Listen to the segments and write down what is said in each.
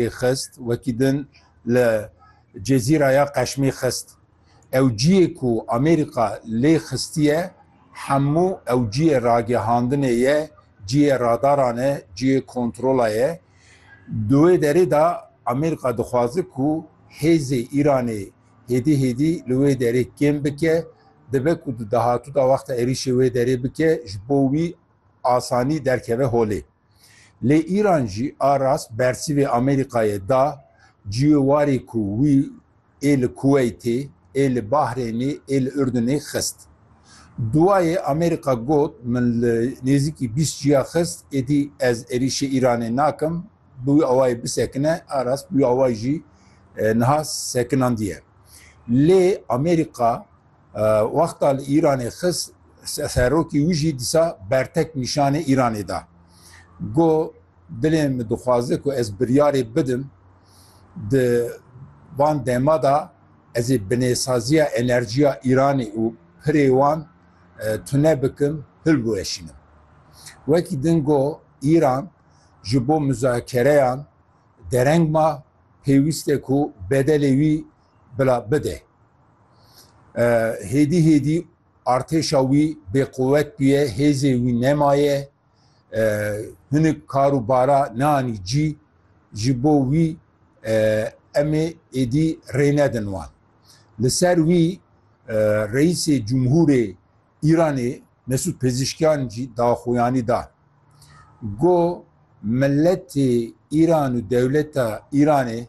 Qeşmîrê xist, wekî din li Cezîraya Qeşmî xist. Ew ciyê ku Amerîka lê xistiye hemû ew ciyê ragihandinê ye, ciyê radaran e, ciyê kontrola ye. Di wê derê de Amerîka dixwaze ku hêzê Îranê hêdî hêdî li wê derê kêm bike. Dibe ku di dahatû de wexta êrîşê wê derê bike ji bo wî asanî derkeve holê. Lê Îran jî a rast bersîvê Amerîkayê da ciyê warê ku wî ê li Kuweytê, ê li Bahrênê, ê li Urdunê xist. Duwayê Amerîka got min li nêzîkî bîst ciya xist, êdî ez êrîşê Îranê nakim, bi wî awayê bisekine, a rast bi wî awayê jî niha sekinandiye. Lê Amerîka Wexta li Îranê xist serokî wî jî dîsa bertek nîşanê Îranê da. Got, Dilê min dixwaze ku ez biryarê bidim di van dema de ez ê binêsaziya enerjiya Îranê û pirê wan tune bikim, hilbiweşînim. Wekî din got, Îran ji bo muzakereyan dereng ma, pêwîst e ku bedelê wî Bila bide. Hêdî hêdî artêşa wî bêquwet bûye, hêzê wî nemaye, hinik kar û bara neanî cî, ji bo wî em ê êdî rê nedin wan. Li ser wî Reîsê Cumhûrê Îranê Mesûd Pezîşkyan jî daxuyanî da ku miletê Îran û dewleta Îranê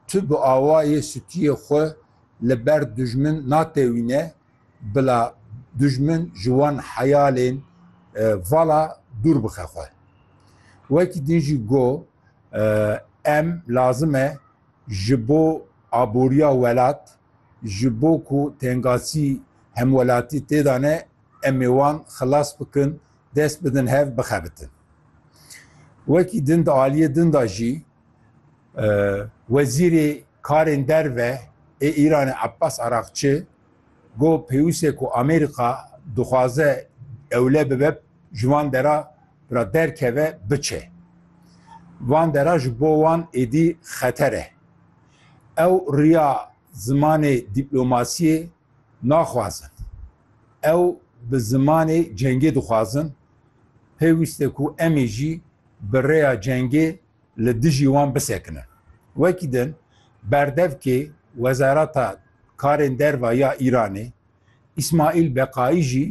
tu bi awayê sûtiyê xwe li ber dijmin natewîne bila dijmin ji wan heyalên vala dûr bixe xwe. Wekî din jî got, Em lazim e ji bo aboriya welat, Ji bo ku tengasî hemwelatî têda ne, em ê wan xilas bikin, dest bidin hev bixebitin. Wekî din di aliyê din de jî Wezîrê Karên Derve ê Îranê Abbas Araqçi got pêwîste ku Amerîka dixwaze ewle bibe ji van dera re derkeve biçe. Van dera ji bo wan êdî xeter e. Ew riya zimanê dîplomasiyê naxwazin. Ew bi zimanê cengê dixwazin. Pêwîst e ku emê jî bi rêya cengê li dijî wan bisekinin. Wekî din, berdevkê Wezareta Karên Derve ya Îranê Îsmaîl Beqaî jî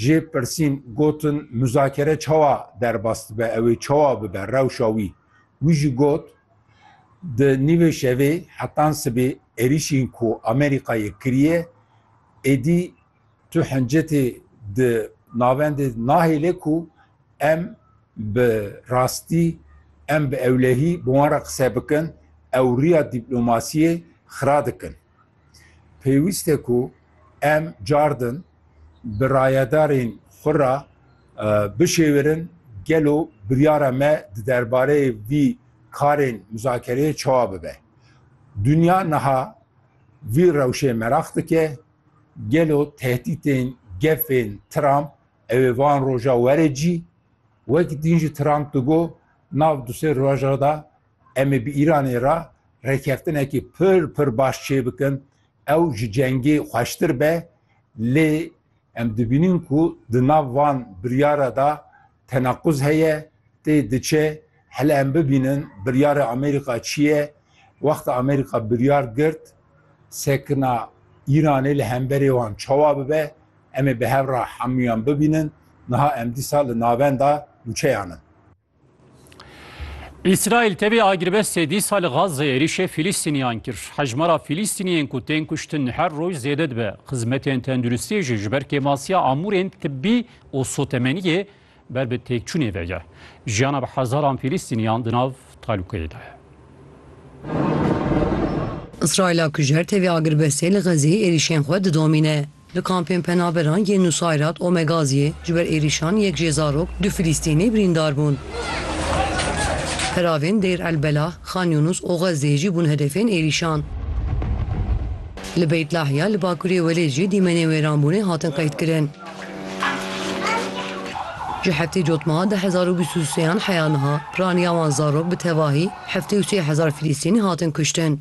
jê pirsîn gotin muzakere çawa derbas dibe, ew ê çawa bibe rewşa wî. Wî jî got, Di nîvê şevê hetan sibê êrîşên ku Amerîkayê kiriye, êdî tu hincetê di navendê nahêle ku em bi rastî, em bi ewlehî bi wan re qise bikin, ew riya dîplomasiyê xira dikin. pêwîst e ku em cardin bi rayedarên xwe re bişêwirin gelo biryara me di derbareyê vî karên muzakereyê çawa bibe. Dinya niha vî rewşê meraq dike, gelo tehdîtên gefên Trump ew ê van roja were cî, wekî din jî Trump digo nav du sê roja de Em ê bi Îranê re rêkeftinekî pir pir baş çêbikin. Ew ji cengê xweştir be, lê em dibînin ku di nav van biryare de tenaquz heye, tê diçe. Hele em bibînin biryarê Amerîka çi ye. Wexta Amerîka biryar girt sekina Îranê li hemberê wan çawa bibe, em ê bi hev re hemûyan bibînin. Niha em dîsa li navenda nûçeyan in. Îsraîl tevî agirbestê dîsa li Gazze êrîşê Fîlîstîniyan kir. Hejmara Fîlîstîniyên ku tên kuştin her roj zêde dibe. Xizmetên tenduristiyê jî ji ber kêmasiya amûrên tibbî û sotemeniyê ber bi têkçûnê ve ye. Jiyana bi hezaran Fîlîstîniyan di nav talûkeyê de ye. Îsraîla kujer tevî agirbestê li Xezzeyê êrîşên xwe didomîne. Di kampên penaberan yên Nusayrat, Omegaziyê ji ber êrîşan yek jê zarok du Filîstînî birîndar bûn. Peravên Dêr El Belah, Xan Yûnûs û Xezzeyê jî bûn hedefên êrîşan. Li Beyt Lahya li bakurê Welêt jî dîmenên wêranbûnê hatin qeydkirin. Ji heftê cotmeha du hezar û bîst û sê an heya niha, raniya wan zarok bi tevahî heftê û sê hezar Filîstînî hatin kuştin.